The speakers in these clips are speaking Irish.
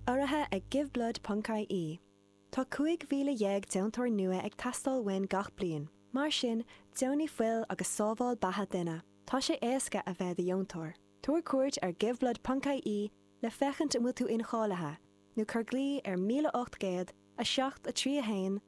Urraithe ag GiveBlood.ie, tá 15,000 deontóir nua ag teastáil uainn gach bliain, mar sin deonaigh fuil agus sábháil beatha duine. Tá sé éasca a bheith i do dheontóir. Tabhair cuairt ar GiveBlood.ie le féachaint an bhfuil tú incháilithe, nó cuir glao ar 1800 7 3 1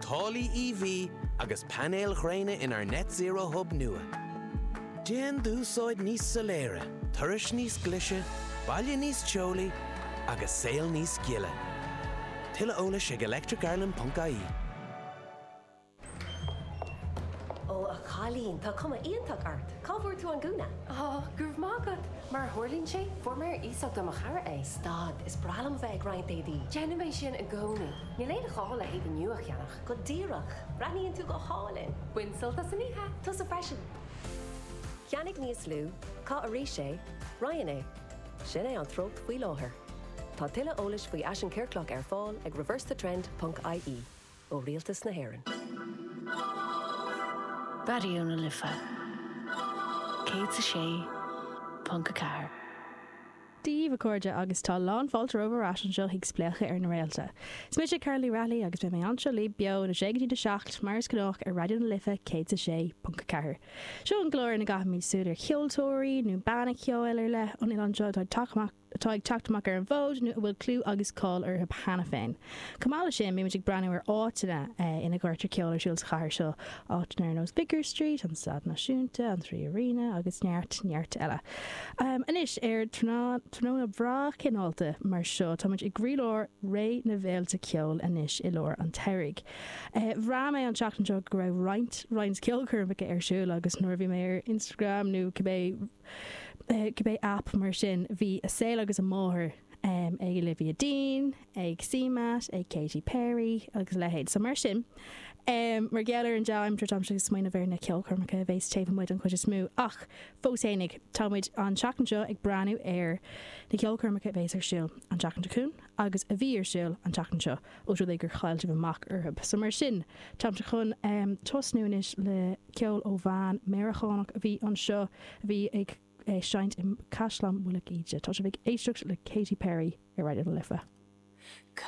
Táillí EV agus painéil ghréine inár Net Zero Hub nua. Déan d'úsáid níos soiléire, turais níos glice, baile níos teolaí agus saol níos gile. Tuilleadh eolais ag electricireland.ie. Ó, a chailín, tá cuma iontach ort! Cá bhfuair tú an gúna? Ó, go raibh maith agat! Mar a tharlaíonn sé, fuair mé ar iasacht ó mo chara é. Stad, is breá liom a bheith ag roinnt éadaí. Déanaim é sin i gcónaí. Níl aon ghá le héadaí nua a cheannach. Go díreach! Breathnaíonn tú go hálainn! Bain sult as an oíche! Tusa freisin! Ceannaigh níos lú, caith arís é, roinn é. Sin é an treocht faoi láthair. Tá tuilleadh eolais faoi fhaisean ciorclach ar fáil ag reversethetrend ponc ie ó Rialtas na hÉireann. Raidió na Life 106.4. Daoibh a chairde agus tá lán fáilte romhaibh ar ais anseo chuig Spléachadh ar na Réalta. Is mise Carol Ní Raghallaigh agus beidh mé anseo libh beo óna sé go dtí na seacht mar is gnách ar Raidió na Life 106.4. Seo an clár ina gcaithimid súil ar cheoltóirí nó banna ceoil ar leith ón oileán seo atá ag teacht amach ar an bhfód nó a bhfuil clú agus cáil orthu cheana féin. Chomh maith leis sin, bímid ag breathnú ar áiteanna ina gcuirtear ceol ar siúl sa chathair seo, áiteanna ar nós Vicar Street, an Staid Náisiúnta, an Three Arena agus neart, neart eile. Anois, ar tráthnóna breá cineálta mar seo, táimid i gcroílár ré na bhféilte ceoil anois i lár an tsamhraidh. Bhraith mé an tseachtain seo go raibh roinnt, roinnt ceolchoirmeacha ar siúl agus nuair a bhí mé ar Instagram nó cibé, cibé aip mar sin, bhí an saol agus a máthair ag Olivia Dean, ag CMAT, ag Katy Perry agus a leithéid. So mar sin, mar gheall ar an dea-aimsir, táimse ag smaoineamh ar na ceolchoirmeacha a bheas taobh amuigh don chuid is mó. Ach fós fhéinig, tá muid an tseachtain seo ag breathnú ar na ceolchoirmeacha a bheas ar siúl an tseachtain seo chugainn agus a bhí ar siúl an tseachtain seo, ós rud é gur chaill sibh amach orthu. So mar sin, táimse chun tosnú anois le ceol ó bhean Meireacánach a bhí anseo a bhí ag. ag seinnt i gCaisleán Mhullach Íde. Tá sibh ag éisteacht le Katy Perry ar Raidió na Life.